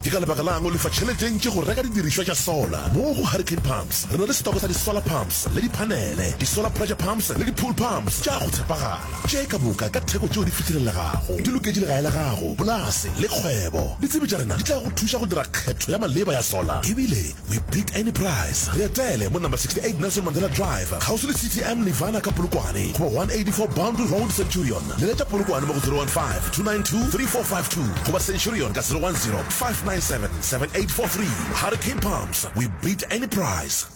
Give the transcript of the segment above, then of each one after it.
Ke ka lebaka la'ng o lefa tšhelete e ntši go reka didirišwa tša sola? Mo go Hurricane Pumps re na le setoko sa di-solar pumps le diphanele, di-solar pressure pumps le di-pool pumps tša go tshepagala. Tše ka moka ka theko tšeo di fihlelelegago, di loketše legae la gago, polase le kgwebo. Ditsebi tša rena di tla go thuša go dira kgetho ya maleba ya sola ebile We beat any price. Re etele mo number 68 Nelson Mandela Drive, kgauswi le CTM Nirvana ka Polokwane, goba 184 Boundary Road, Centurion. Leletša Polokwane mo go 015-292-3452 goba Centurion ka 010-597-7843. Hurricane Pumps, we beat any price.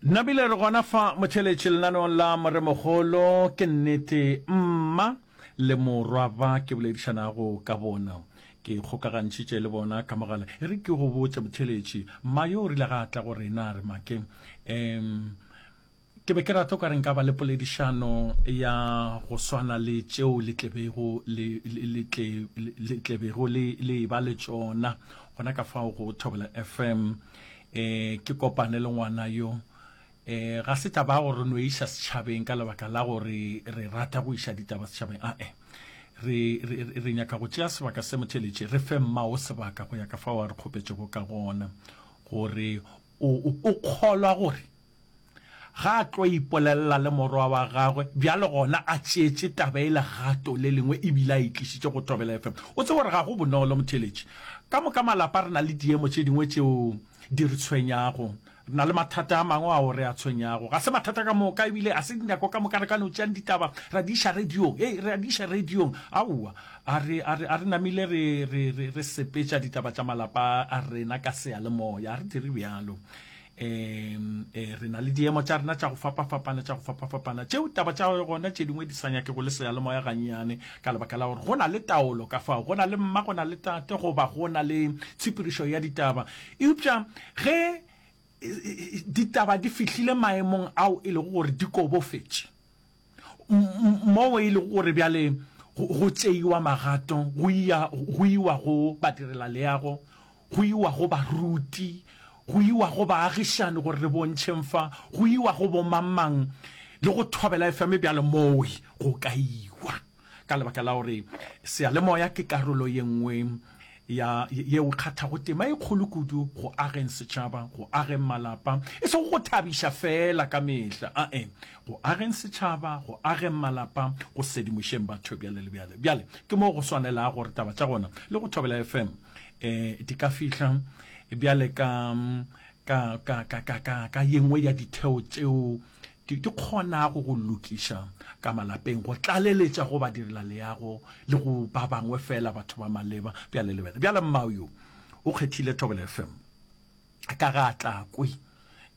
Nabile re gona fa motheletši lenaneong la Moremogolo. Ke nnete mma le morwa ba ke boledišanago ka bona ke kgokagantšhitše le bona ka mogala e re ke go botse motheletši mma yo o rile ga a tla go rena a re make um ke be ke rata o ka re nka ba le poledišano ya go swana le tšeo le tlebego le tlebego le e ba le tšona gona ka fao go thobela fm e ke kopane le ngwana yo e ga se taba gore re no iša setšhabeng ka lebaka la gore re rata go iša ditaba setšhabeng a e re re re nyaka go tšea sebaka se motheletše re fe mma o sebaka go ya ka fa wa re kgopetšego ka gona gore o kgolwa gore Ga a tlo ipolelela le morwa wa gagwe, bjale gona a tšeetše taba e legato le lengwe e bile a e tlišitše go Thobela FM. O tsebe gore ga go bonolo, motheeletši. Ka moka malapa re na le diemo tše dingwe tšeo di re tshwenyago. Re na le mathata a mangwe ao re a tshwenyago. Ga se mathata ka moka e bile ga se dinako ka moka re ka no tšeang ditaba ra di iša radiong. Hei, re a di iša radiong. Aowa, a re, a re, a re namile re, re, re, re sepetša ditaba tša malapa a rena ka seyalemoya. A re dire bjalo. um e, re na le diemo tša rena tša go fapafapana tša go fapafapana tšeo taba tša gona tše dingwe di sa nyake go le seyalemoya gannyane ka lebaka la gore go na le taolo ka fao go na le mma go na le tate goba go na le tshepirišo ya ditaba eupša ge e, e, ditaba di fihlile maemong ao e lego gore di kobofetše Mo e lego gore bjale go tšeiwa magato go iya go iwa go badirela leago, go iwa go baruti, go iwa go baagišani gore re bontšheng fa, go iwa go bomang-mang le go thobela efame bjale moo go ka iwa. Ka lebaka la gore seyalemoya ke karolo ye nngwe ya yeo kgathago tema e kgolo kudu go ageng setšhaba, go ageng malapa, e sego go thabiša feela ka mehla, a-e, go ageng setšhaba, go ageng malapa, go sedimošeng batho bjale le bjale. Bjale, ke moo go swanelago gore taba tša gona le go Thobela FM e, di ka fihla bjale ka, ka, ka, ka, ka, ka, ka ye nngwe ya ditheo tšeo Ke ke kgonago go lokiša ka malapeng, go tlaleletša go badirelaleago le go ba bangwe feela batho ba maleba. Bjale lebele, bjale mmao yo o kgethile Thobela FM ka ga a tla kwe,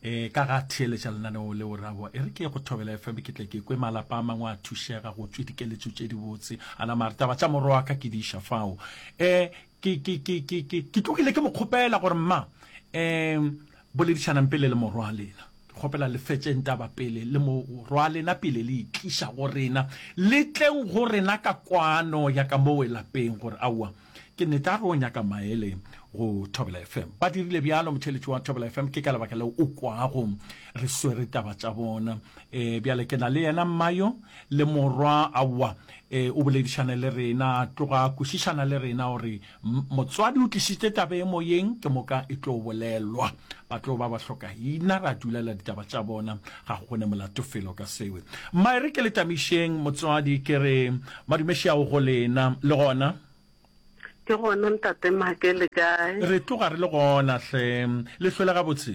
e, ka ga a theeletša lenaneo leo ra bo, e re ke ye go Thobela FM ke tle ke kwe malapa a mangwe a thušega go tšwe dikeletšo tše dibotse. A nama a re, Taba tša moro wa ka ke di iša fao. E, ke, ke, ke, ke, ke, ke tlogile ke mo kgopela gore, Mma, e, Boledišanang pele le morwalena. Ke kgopela le fetšeng taba pele le morwalena pele le e tliša go rena. Le tleng go rena ka kwano ya ka mowe lapeng gore aowa ke nnete a re o nyaka maele go Thobela FM. Ba dirile bjalo, motheeletši wa Thobela FM, ke ka lebaka leo o kwago re swere taba tša bona. E, bjale ke na le yena mma yo le morwa, aowa, e, o boledišane le rena, tloga kwešišana le rena gore Motswadi o tlišitše taba e moyeng ke moka e tlo bolelwa ba tlo ba ba hloka ina ra dulela ditaba tša bona ga go ne molato felo ka sewe mma e re ke le tamišeng motswadi ke re madumešeago go lena le gona ke gona ntate make le kae re tloga re le gona hle le hlwele gabotse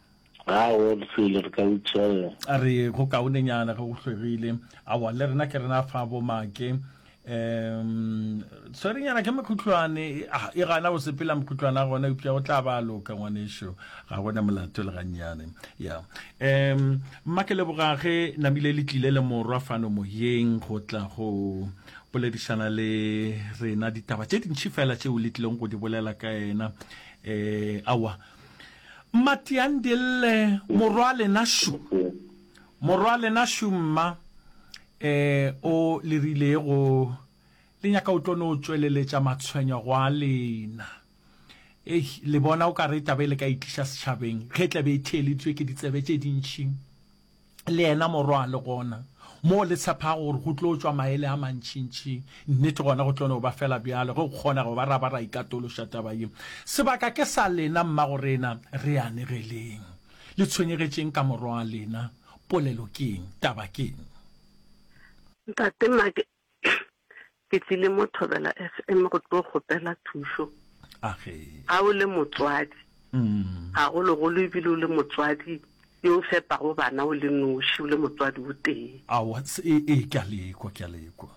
Ga go selo re ka utšwella. A re, Go kaonenyana ge go hlwegile. Aowa, le rena ke rena fa bomake. Um, Swerenyana ke mokhutlwane. Ah, e gana go sepela mokhutlwana gona, eupša go tla ba a loka, ngwanešu. Ga go na molato le gannyane. Ya. Um, mma ke leboga ge namile le tlile le morwa fano moyeng go tla go boledišana le rena ditaba tše dintši fela tšeo le tlileng go di bolela ka yena. Um, aowa. Mma Tiandille, Morwa lena Shu. Morwa lena Shu mma, eh, o le rilego le nyaka o tlo no tšweleletša matshwenyego a lena. Eish, le bona o ka re taba e le ka e tliša setšhabeng ge e tla be e theeleditšwe ke ditsebe tše dintši. le yena Morwa, le gona, moo le tshepago gore go tlo tšwa maele a mantšintši. Nnete, gona go tlo no ba feela bjalo, ge go kgonega, go ba ra ba ra ikatološa taba ye. Sebaka ke sa lena, mmagorena. Re anegeleng. Le tshwenyegetšeng ka Morwa wa lena. Polelo ke eng? Taba ke eng? Ntate Mark, Ke tlile mo Thobela FM go tlo kgopela thušo. Ga o le motswadi, gagologolo ebile o le motswadi yo o fepago bana o le noši, o le motswadi o tee. Aowa, e, e, ke a lekwa, ke a lekwa.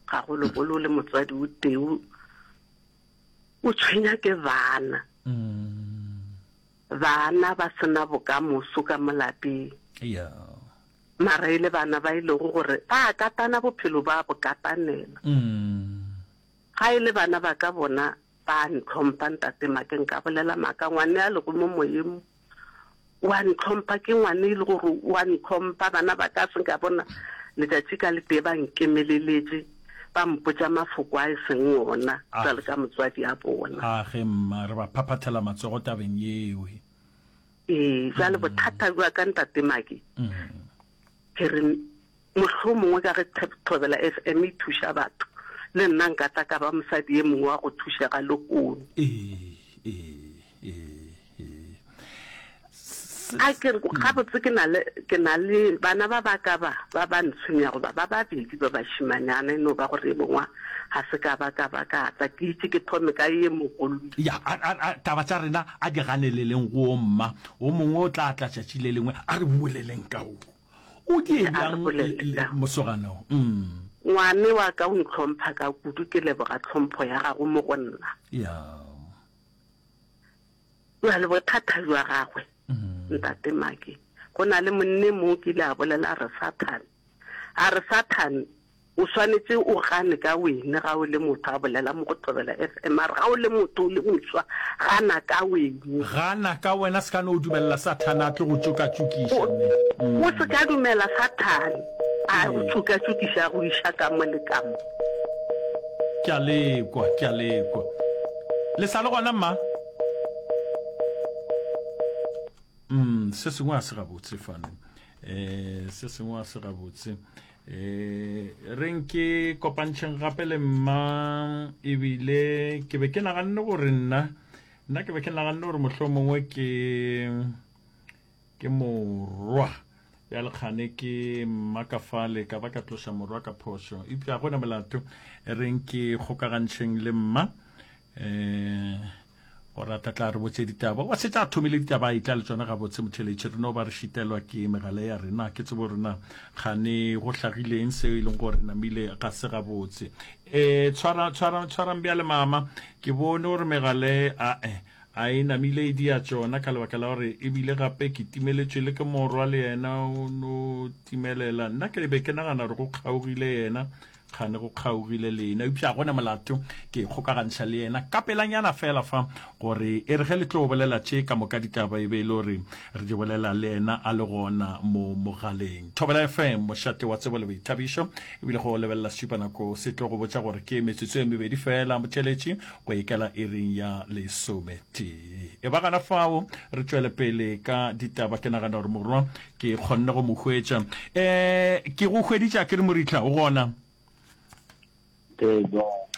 Gagologolo o le motswadi o tee, o tshwenya ke bana. Bana ba se na bokamoso ka mo lapeng. Mara e le bana ba e lego gore ba katana bophelo ba bo katanela. Ga e le bana ba ka bona ba ntlhompha ntate ma ke nka bolela maka ngwane a lego mo moyeng mo wa ntlhompha ke ngwane e le gore wa ntlhompha bana ba ka se nka bona letšatši ka le tee ba nkemeleletse. ba mpotša mafoko a e seng ona Ah. jwalo ka motswadi a bona. a ge mma re ba phaphathela matsogo tabeng yeo he. Ee, jwale bothata jwa ka ntate Maki Mm. ke re mohlho mongwe ka ge Thab- thobela fm e thuša batho le nna nka tla ka ba mosadi e mongwe wa go thušega lehono ee ee a ke re gabotse ke na le ke na le bana ba ba ka ba ba ba ntshwenya goba ba babedi ba bashimanyana e no ba gore e bongwa ga se ka ba ka ba ka tla ke itse ke thome ka ye mogolo ya a- a- a- taba tša rena a di ganeleleng go mma o mongwe o tla tla tšatši le lengwe a re boleleng ka o o di Ee, a re ebjang bolele le- le- ka o. mosoganong mm. ngwane wa ka o ntlhompha ka kudu ke leboga tlhompho ya gago mo go nna ya Bjale bothata bja gagwe ntate Maki, go na le monne mo ke ile a bolela re Satan. A re Satan o swanetse o gane ka wene ga o le motho a bolela mo go Thobela FM a re ga o le motho o le moswa gana ka wene. Gana ka wena se ka no dumelela Satan a tle go tšokatšokiša mme. O se ka dumela Satan a go tšokatšokiša a go iša ka mo le ka mo. Ke a lekwa, ke a lekwa. Le sa le gona, mma? Um, se sengwe a se gabotse fane. Eh, se sengwe a se gabotse. Eh, re nke kopantšheng gape le mma ebile ke be ke naganne gore nna nna ke be ke naganne gore mohlomongwe ke Ke morwa bjale kgane ke mmakafale ka ba ka tloša morwa ka phošo eupša gona molato e reng ke kgokagantšheng le mma um gore a tlatla re botse ditaba wa setse a thomile ditaba a itla le tsona gabotse motheletše re no ba re šitelwa ke megale ya rena ke tsebo rena kgane go hlagileng seo e leng gore namile ga se gabotse um tshwarang bjale mama ke bone gore megale ae A e namile e dia tšona ka lebaka la gore e bile gape ke timeletšwe le ke morwa le yena o no timelela. Nna ke be ke nagana gore go kgaogile yena, kgane go kgaogile le yena. Eupša gona molato, ke ikgokagantšha le yena ka pelanyana feela fa, gore e re ge le tlo bolela tše ka moka ditaba e be e le gore re di bolela le yena a le gona mo mogaleng. Thobela FM, mošate wa tsebo le boithabišo. E bile ge o lebelela setšupanako se tlo go botša gore ke metsotso e mebedi feela, Motšeletši go ikela iring ya lesometee e ba gana fao re tšwele pele ka ditaba ke nagana gore morwa ke kgonne go mo hwetša um ke go hweditša ke re moritlha o gona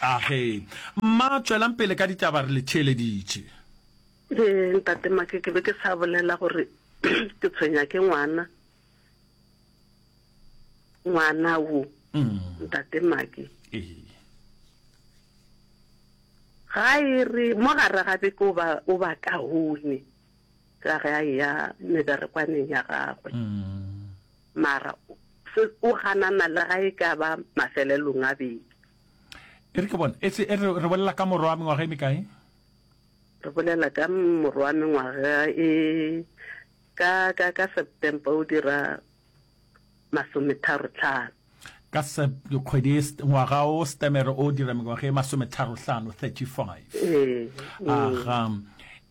age mma tswelang pele ka ditaba re le theeleditše ee ntate make ke be ke sa bolela gore ke tshwenya ke ngwana ngwana wo mm. ntate maki ga e re mo gare ga beke o ba kaone ka ge a ya meberekwaneng ya gagwe mm. mara o ganana le ga e ka ba mafelelong a beke e re ke bona e e re bolela ka morwa wa mengwaga e mekae re bolela ka morwa wa mengwaga e Ka, ka, ka September o dira masometharo-tlhano. Ka Sep, kgwedi e, ngwaga o Setemere o dira mengwaga e masometharo-hlano, 35. Ee, ee. Aga,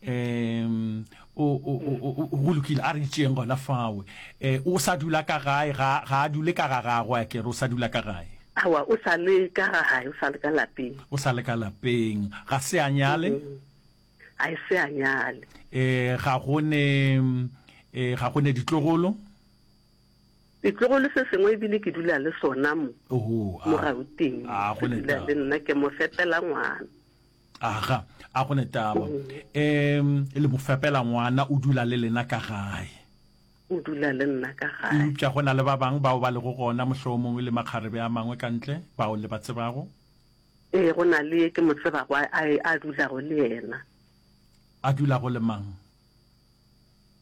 em, o, o, o, o, o, go lokile, a re itšeeng gona fao. E, o sa dula ka gae, ga, ga a dule ka ga gagwe, a ke re o sa dula ka gae. Aowa, o sa le ka ga gae, o sa le ka lapeng. O sa le ka lapeng, ga se a nyale? Mm. a e se a nyale. E, ga go ne, e, ga go ne ditlogolo? Ditlogolo se sengwe ebile ke dula le sona mo, Oho, a, mo Gauteng. a go ne Dula le taba. nna ke mo fepela ngwana. Aga, a go ne taba. Em, le mo fepela ngwana o dula le lena ka gae. O dula le nna ka gae. Eupša go na le ba bang bao ba lego gona mohlomongwe le makgarebe a mangwe ka ntle, bao le ba tsebago? Ee, go na le ye ke mo tsebago a, a, a dulago le yena. A dulago le mang?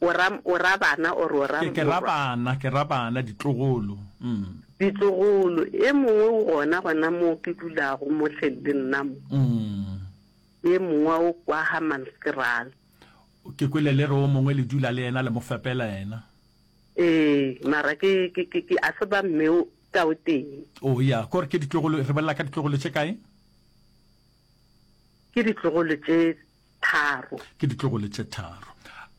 O ra, o ra bana or o ra Ke, ke ra morwa? bana, ke ra bana, ditlogolo. Mm. Ditlogolo. E mongwe o gona, gona moo ke dulago, mo hleng le nna mo. Mm. E mongwe o kwa Hammanskraal. Ke kwele le re o mongwe le dula le yena, le mo fepela yena. Ee, mara ke, ke, ke, ke a tseba mme o, ka o tee. Oh, ya, k'ore ke ditlogolo. Re bolela ka ditlogolo tše kae? Ke ditlogolo tše tharo. Ke ditlogolo tše tharo.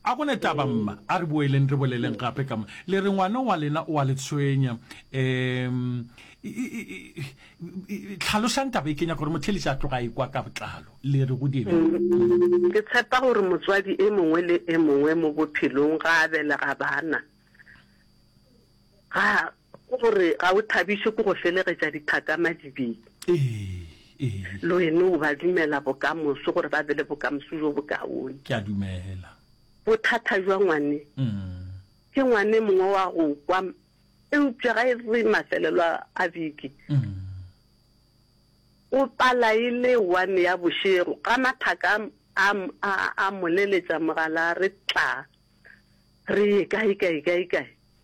A go ne taba, mma. A re boeleng re boleleng gape ka mo. Le re ngwana wa lena o a le tshwenya. Um, tlhalosang taba e. Ke nyaka gore motheeletši a tloge a e kwa ka botlalo. Le re go dibe. Ke tshepa gore motswadi e mongwe le e mongwe mo bophelong ga a belega bana, ga, Ke gore ga o thabišwe ke go felegetša dithaka madibeng. Le wena o ba dumela bokamoso gore ba be le bokamoso bjo bokaone. Ke a dumela. Bothata bja ngwane ke ngwane mongwe wa go kwa eupša ga e re mafelelo a beke o pala e le one ya bošego ga mathaka a moleletša mogala re tla re ye kae kae kae kae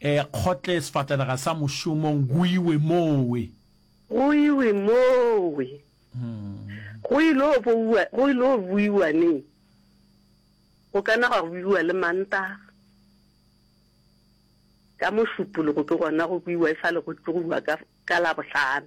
E kgotle sefatanaga sa mošomong go iwe mowe. Go iwe mowe. Go ilo bouwa, go ilo buiwa neng? Go ka na gwa buiwa le Mantaga. Ka Mošupologo ke gona go buiwa e sa le go tsogiwa ka, ka Labohlano.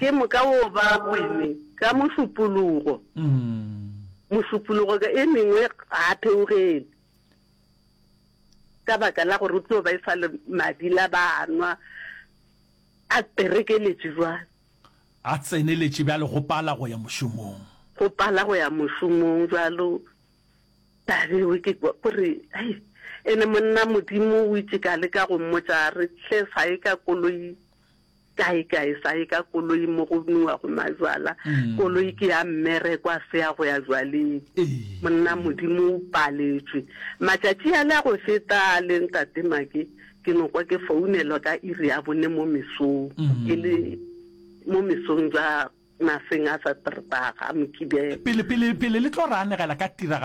Ke moka wo ba wine ka mošupologo, mošupologo ka e mengwe ga a theogele, ka baka la gore o tlo ba e sa le madi la ba a nwa, a perekeletše jwale. A tseneletše bjale go pala go ya mošomong. Go pala go ya mošomong jwalo. Tabe we ke kwa kore hai ene monna modimo o itše ka le ka go mmotša re tle sa ye ka koloi kae kae sa ye ka koloi mo go nua go majwala koloi ke ya mmere kwa se ya go ya jwaleng monna modimo o paletšwe matšatši a le a go feta a le ntate make ke no kwa ke founelwa ka iri ya bone mo mesong ke le mo mesong ja Mafeng a sa Trbaga, Mokibelo. Pele, pele, pele le tlo re anegela ka tiragalo.